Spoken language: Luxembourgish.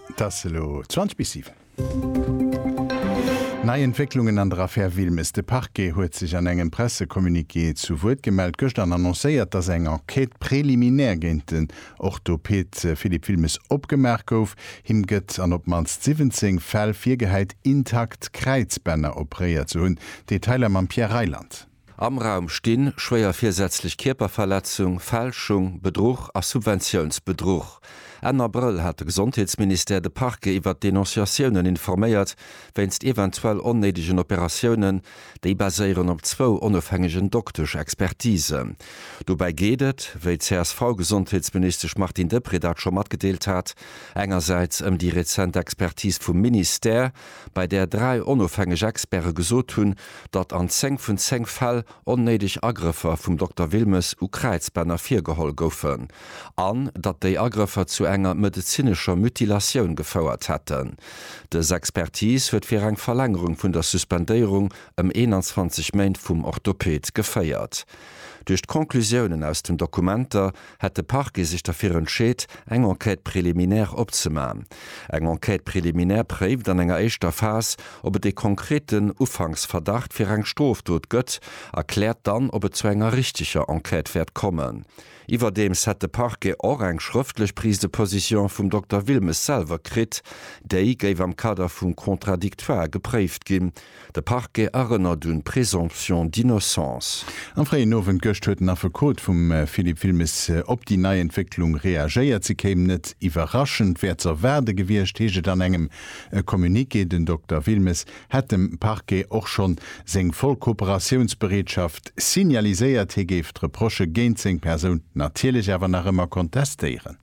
Et ass elo 20 bis 7. Nei Entwécklungen an der Affär Wilmes, De Parquet huet sech an engem Pressecommuniqué zu Wuert gemellt gëschter an annoncéiert, datt eng Enquête préliminaire géint den Orthopeed Philippe Wilmes opgemaach gouf. Him gëtt an op d'mannst 17 Fäll virgehäit, intakt Kräizbänner opréiert ze hunn. Detailer mam Pierre Reyland. Am Raum stinn, schwéier virsätzlech Kierperverletzung, Fälschung, Bedruch a Subventiounsbedruch. Enn Abrëll hat de Gesondheetsministère de Parquet iwwert d'Denonciatiounen informéiert, wéinst eventuell onnéidegen Operatiounen. Déi baséieren op zwou onofhängegen Doktesch-Expertisen. Dobäi geet et, wéi d'CSV-Gesondheetsministesch Martine Deprez dat scho matgedeelt hat, engersäits ëm déi rezent Expertis vum Ministère, bei där dräi onofhängeg Experte gesot hunn, datt an 10 vun 10 Fäll onnéideg Agrëffer vum Dokter Wilmes u Kräizbänner virgeholl goufen an datt déi Agrëffer zu enger medezinescher Mutilatioun gefouert hätten. Dës Expertis huet fir eng Verlängerung vun der Suspendéierung ëm 21 Méint vum Orthoped geféiert. Duerch d'Conclusiounen aus den Dokumenter hätt de Parquet sech derfir entscheet, eng Enquête préliminaire opzemachen. Eng Enquête préliminaire préift an enger éischter Phas, ob et ee konkreten Ufanksverdacht fir eng Strofdot gëtt a kläert dann, ob et zu enger richteger Enquête wäert kommen. Iwwerdeems hätt de Parquet och eng schrëftlech Prise de position vum Dokter Wilmes selwer kritt. Déi géif am Kader vum Contradictoire gepréift ginn. De Parquet erënnert un d'Présomption d'innocence. Am fréien Owend gëscht huet den Affekot vum Philippe Wilmes op déi nei Entwécklung reagéiert. Se kéim net iwwerraschend, wär ze erwaarde gewiescht, heescht et an engem Communiqué. Den Dokter Wilmes hätt dem Parquet och schonn seng voll Kooperatiounsbereetschaft signaliséiert. Hie géif d'Reprochë géint seng Persoun natierlech awer nach ëmmer kontestéieren.